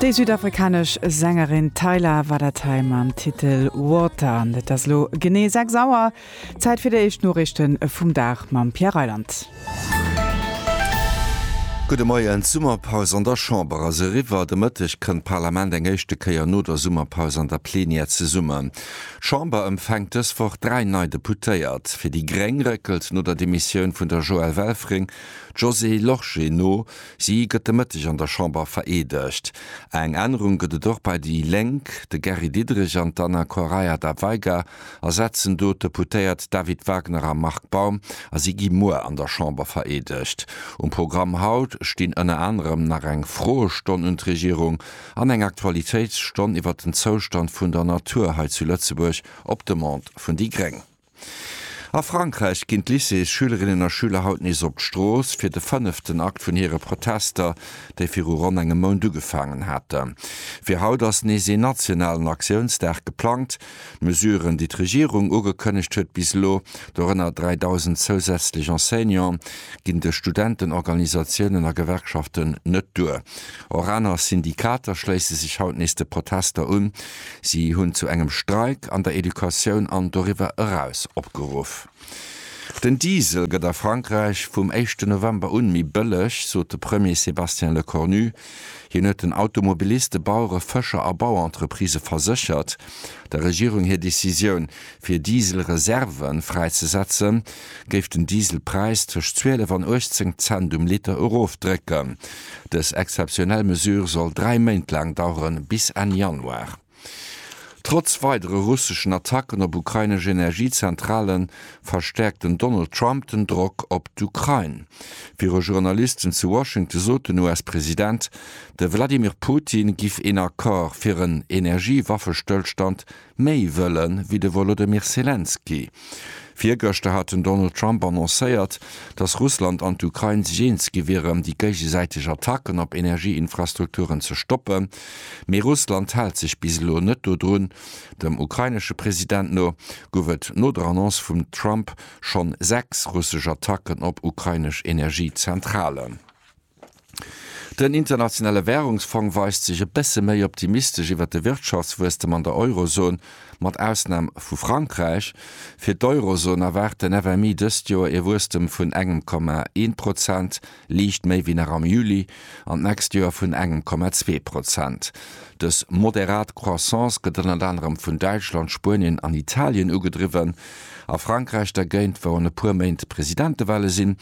Déi südafrikanesch Sängerin Tyla war dat hei mam Titel Water. An et ass elo genee 6 Auer. Zäit fir déi éischt Noriichte vum Dag mam Pierre Reyland. Gudde Moien. D'Summerpaus an der Chamber ass eriwwer. De Mëtteg kënnt d'Parlament eng éischte Kéier no der Summerpaus an der Plenière zesummen. D'Chamber empfänkt dës Woch dräi nei Deputéiert. Fir déi gréng réckelt no der Demissioun vun der Joëlle Welfring d'Josée Lorsché no. Si gëtt de Mëtteg an der Chamber vereedegt. Eng Ännerung gëtt et och bei déi Lénk, De Gary Diderich an d'Anna Correia da Veiga ersetzen do d'Deputéiert David Wagner a Marc Baum a si gi muer an der Chamber vereedegt. Um Programm haut stinn ënner anerem nach eng Froestonn un d'Regierung an eng Aktualitéitsstonn iwwer den Zoustand vun der Natur hei zu Lëtzebuerg op Demande vun déi gréng. A Frankräich ginn d'Lycéesschülerinnen a schüler haut nees op d'Strooss, fir de fënneften Akt vun hire Protester, déi viru ronn engem Mount ugefaangen haten. Fir haut ass nees een nationalen Aktiounsdag geplangt. D'Mesuren, déi d'Regierung ugekënnegt huet bis elo, dorënner 3.000 zousätzlech Enseignanten, ginn de Studentenorganisatiounen a Gewerkschaften net duer. Och aner Syndikater schléisse sech haut nees de Protester un. Si hunn zu engem Streik an der Educatioun an doriwwer eraus opgeruff. Den Diesel gëtt a Frankräich vum éischte November un méi bëlleg, sot de Premier Sébastien Lecornu. Hien huet den Automobiliste, Bauere, Fëscher a Bauentreprisë verséchert, der Regierung hir Decisioun Fir Dieselreserve fräizesetzen, géif den Dieselpräis tëscht 12 an 18 Cent um Liter erofdrécken. Dës exzeptionell Mesure soll dräi Méint laang daueren, bis Enn Januar. Trotz weidere russeschen Attacken op ukrainesch Energiezentrale verstäerkt den Donald Trump den Drock op d'Ukrain. Viru Journalisten zu Washington sot den US-President, de Wladimir Putin giff een Accord fir en Energiewaffestëllstand Méi wëlle wéi de Wolodymyr Selenskyj. Virgëschter hat den Donald Trump annoncéiert, datt Russland an d'Ukrain sech eens gi wieren, déi géigesäiteg Attacken op Energieinfrastrukturen ze stoppen. Mee Russland hält sech bis elo net dodrun. Dem ukrainesche President no gouf et no der Annonce vum Trump schonn sechs russesch Attacken op ukrainesch Energiezentralen. Den Internationale Währungsfong weist sech e bësse méi optimistesch iwwer de Wirtschaftswuesstem an der Eurozon, mat Ausnam vu Frankräich. Fir d'Eurozon erwaart den FMI dëst Joer ee Wuesstem vun engem Komma ee Prozent, liicht méi wéi nach am Juli, an d'nächst Joer vun engem Komma zwee Prozent. Dës moderat Croissance gëtt ënnert anerem vun Däitschland, Spuenien an Italien ugedriwwen. A Frankräich dergéint, wou an e puer Méint Presidentewale sinn,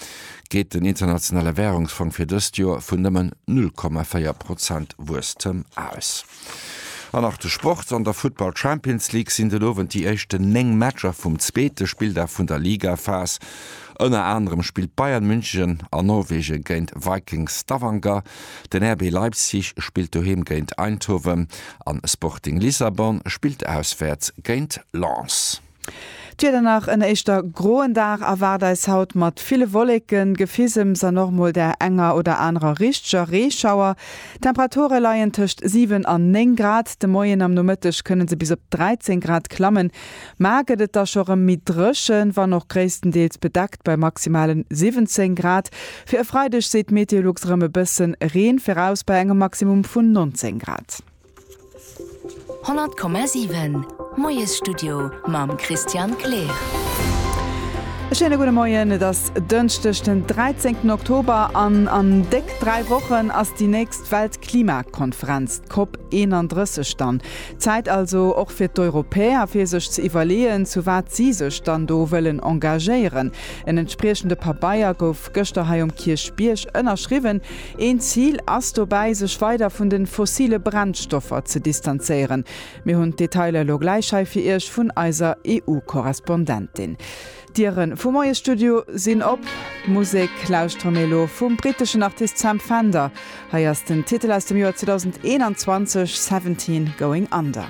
geet den Internationale Währungsfong fir dëst Joer vun nëmmen 0,4 Prozent Wuesstem aus. An nach de Sport, An der Futtball Champions League sinn den Owend déi éischten 9 Matcher vum zweete Spilldag vun der Ligaphas. Ënner anerem spillt Bayern München an Norwegen géint Viking Stavanger, den RB Leipzig spillt doheem géint Eindhoven an Sporting Lissabon spillt auswäerts géint Lens. D'Wieder Nach en éischter groen Dag erwaart eis haut mat ville Wolleken, Gefisems an och mol der enger oder anerer richteger Reeschauer. D'Temperature leien tëscht 7 an 9 Grad, de Moien am Nomëtteg kënne se bis op 13 Grad klammen. Mä gëtt et da scho rëm méi dréchen, wann och gréisstendeels bedeckt bei maximalen 17 Grad. Fir e Freideg seet d'Meteolux rëm e bësse Reen viraus bei engem Maximum vun 19 Grad. 100,7 Moiesstudio mam Christian Kleer. E schéine gudde Moien. Et ass Dënschdeg den 13 Oktober an an déck 3 Wochen ass déi nächst Weltklimakonferenz, d'COP 31 dann. Zäit also och fir d'Europäer, fir sech ze iwwerleeën, zu wat si sech dann do wëllen engagéieren. En entspriechende Pabeier gouf gëschter hei um Kierchbierg ënnerschriwwen. Een Zil ass dobäi, sech weider vun de fossile Brennstoffer ze distanzéieren. Mir hunn d'Detailer elo gläich hei fir Iech vun eiser EU-Korrespondentin. D'Dieren vum Moies Studio sinn op. D'Musek lauschtere mir elo vum briteschen Artist Sam Fender. Hei ass den Titel aus dem Joer 2021, Seventeen Going Under.